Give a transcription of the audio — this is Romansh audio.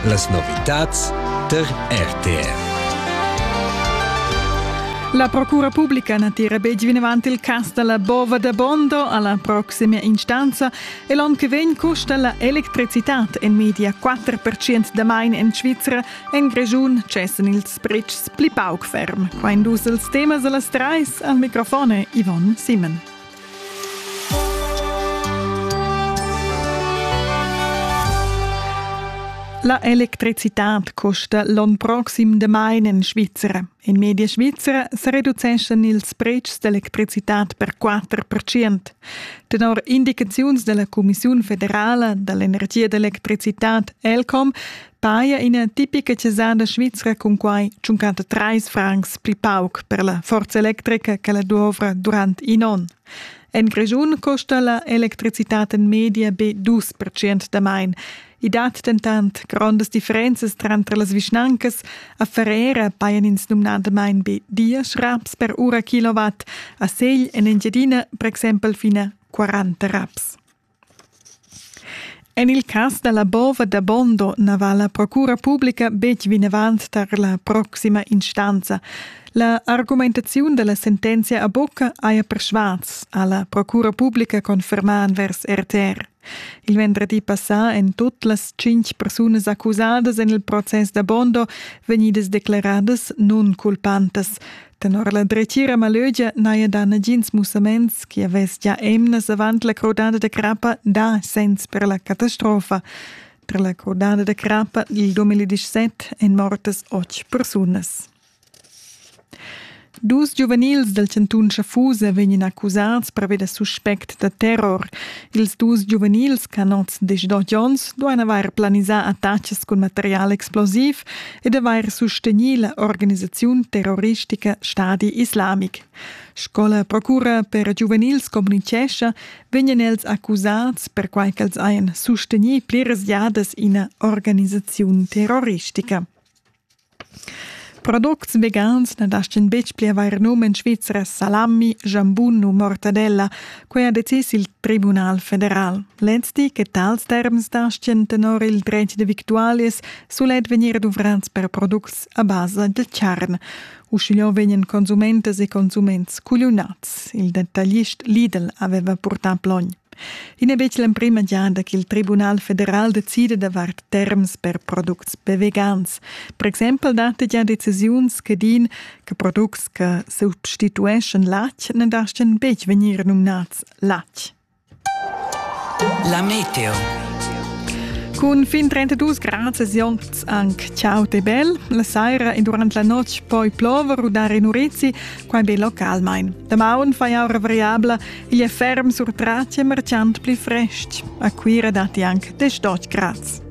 Las novitads tar RTR. La Procura Pubblica na tira betg vinavant il cas da la bova da Bondo alla proxima instanza e l'onn che vegn custa la electricitad en media 4% da main en Svizra. En Grischun cessen ils pretschs pli pauc ferm. Qua in dus als temas a las trais al microfon Yvonne Simon. La electricitad costa l'onn proxim damain en Svizra. In media svizra sa reduceschan ils pretschs d'electricitad per 4%. Tenor indicaziuns della Commissiun federala dall'energia ed electricitad ELCOM Paia ina tipica chesada svizra cun quai tschunquanta trais francs pli pauc per la forza electrica che la dovra durant in onn. En Grischun costa la electricitad en media be dus percent damain. I dat dentant grondas differenzas tranter las vischnancas. A Ferrera pajan ins numnadamain be diesch raps per ura kilowatt, a Segl en Engiadina per exempel fina 40 raps. En il cas da la bova da Bondo na va la procura publica betg vinavant tar la proxima instanza. La argumentaziun da la sentenzia a bucca haja persvas, ha la procura publica confermà envers RTR. Il venerdì passà èn tut las tschintg persunas accusadas en il process da Bondo vegnidas declaradas nunculpantas. Tenor la dretgira malögia n'haja dà nagins mussaments chi avess già emnas avant la crudada da crappa dà sens per la catastrofa. Tra la crudada da crappa il 2017 èn mortas otg persunas. Dus giuvenils dal chantun Schaffusa vegnan accusats per avere suspect da terror. Ils dus giuvenils, canots de Jones, duan avair planisà attacks cun material explosiv e d'avair sustegnì la organisaziun terroristica Stadi Islamic. Sco la procura per giuvenils communitgescha, vegnan els accusads perquai ch'els hajan sustegnì pliras giadas ina organisaziun terroristica. Products vegans na dastgan betg pli avair num en Svizra salami, jambun u mortadella, Quei ha decis il Tribunal federal. Lezdi che tals terms dastgien tenor il dretg de victualias sulet vegnir duvrats per products a basa de charn. Uschigliò vegnan consumentas e consuments cugliunats. Il detaglist Lidl aveva purtà plogn. I n'è betg l'emprima giada ch'il Tribunal federal decide davart terms per products bevegans. Per exempel datti gia decisiuns che din che products che substitueschan latg ne dastgan betg vegnir nominats latg. La meteo. Cun fin 32 grad Sionz anche ciao te bel, la saira e durante la notte poi plover u dare in Urizzi, quai be localmain. Da maun fai aura variabla, igl è ferm sur tracce marciant pli frest. A Cuira datti anche 18 grad.